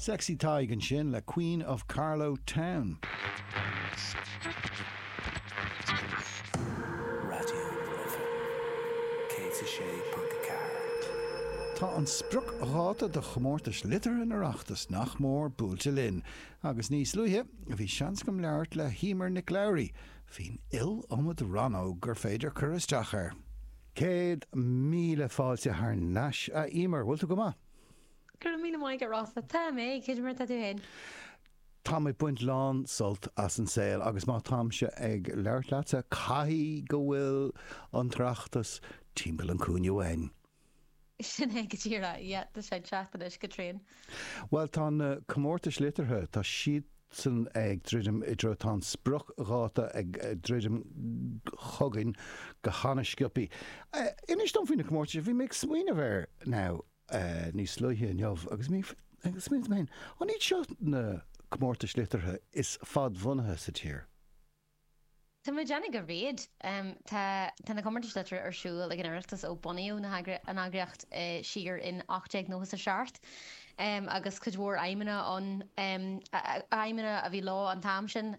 Sexy Tadhg ansin le Queen of Carlow Town. Raidió na Life 106.4. Tá an spriocdháta do Chomórtais Liteartha an Oireachtais nach mór buailte linn agus níos luaithe bhí seans agam labhairt le hEmer Nic Labhraí faoin iliomad rannóg gur féidir cur isteach air. Céad míle fáilte thar nais, a Emer. Bhfuil tú go maith? Go raibh míle maith agat, Rossa. Tá mé! Cad é mar atá tú féin? Táim ag baint lán sult as an saol agus má táimse ag labhairt leatsa caithfidh go bhfuil an tOireachtas timpeall an cúinne uainn. Sin é go díreach. Yeah, tá sé ag teacht anois go tréan. Bhuel, tá na comórtais liteartha, tá siadsan ag druidim i dtreo, tá an spriocdháta ag druidim chugainn go han-sciopaí. Inis dom faoi na comórtais, bhí mé ag smaoineamh air now, níos luaithe inniu agus mé ag smaoineamh hmm, an iad seo na comórtais liteartha is fadbhunaithe sa tír? Tá muid ag déanamh réidh. Tá na comórtais liteartha ar siúl ag an Oireachtas ó bunaíodh an eagraíocht siar in ocht déag nócha a seacht agus cuid mhór aidhmeanna ann, aidhmeanna a bhí leo an t-am sin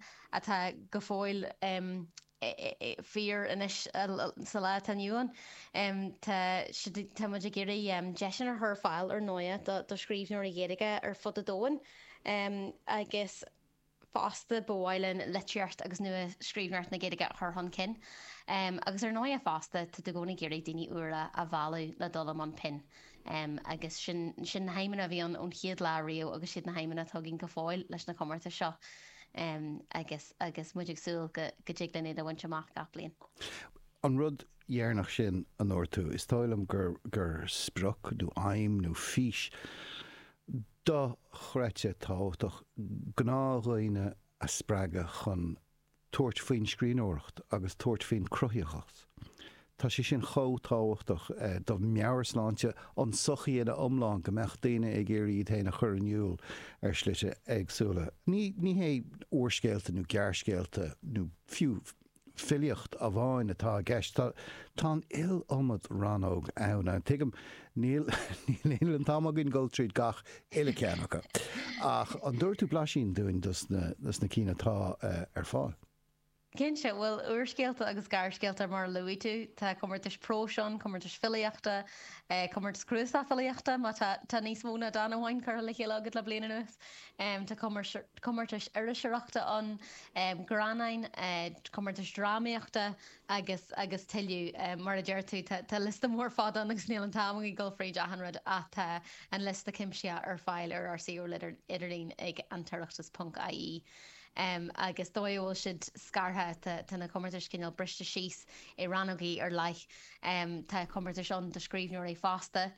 atá go fóill fíor anois sa lá atá inniu ann. Tá muid ag iarraidh deiseanna a chur ar fáil ar ndóigh do scríbhneoirí Gaeilge ar fud an domhain agus. fosta ba mhaith linn litríocht agus nuascríbhneoireacht na Gaeilge a chur chun cinn agus ar ndóighe fosta táthar i gcónaí ag iarraidh daoine úra a mhealladh le dul i mbun pinn agus sin sin na haidhmeanna a bhí ann ón chéad lá riamh agus is iad na haidhmeanna atá againn go fóill leis na comórtais seo agus agus muid ag súil go go dtig linn iad a bhaint amach gach bliain. An rud deireanach sin a dúirt tú, is dóigh liom gur gur sprioc nó aidhm nó fís dochreidte tábhachtach gnáthdhaoine a spreagadh chun tabhairt faoin scríbhneoireacht agus tabhairt faoin gcruthaitheacht. Tá sé sin chomh tábhachtach do mheabhairshláinte an tsochaí ina iomlán go mbeadh daoine ag iarraidh iad féin a chur in iúl ar shlite éagsúla. Ní hé úrscéalta nó gearrscéalta nó fiú filíocht amháin atá i gceist. Tá an iliomad rannóg ann. Tuigim, níl an t-am againn dul tríd gach uile ceann acu. Ach an dtabharfaidh tú blaisín dúinn dos na cinn atá ar fáil? Cinnte, bhuel, úrscéalta agus gearrscéalta mar a luaigh tú. Tá comórtais próis ann, comórtais filíochta, comórtas cnuasach filíochta má tá níos mó ná dán amháin curtha le chéile agat le bliain anuas. em tá comórtais iriseoireachta ann em gearrscannáin eh comórtais drámaíochta agus agus tuilleadh em mar a deir tú tá tá liosta mór fada ann agus níl an t-am againn dul fríd achan rud ach tá an liosta cuimsithe ar fáil ar ár suíomh idirlín ag an tOireachtas ponc IE em agus dóigh a bhfuil siad scartha tá tá na comórtais cineál briste síos i rannógaí ar leith em tá comórtais ann do scríbhneoirí fásta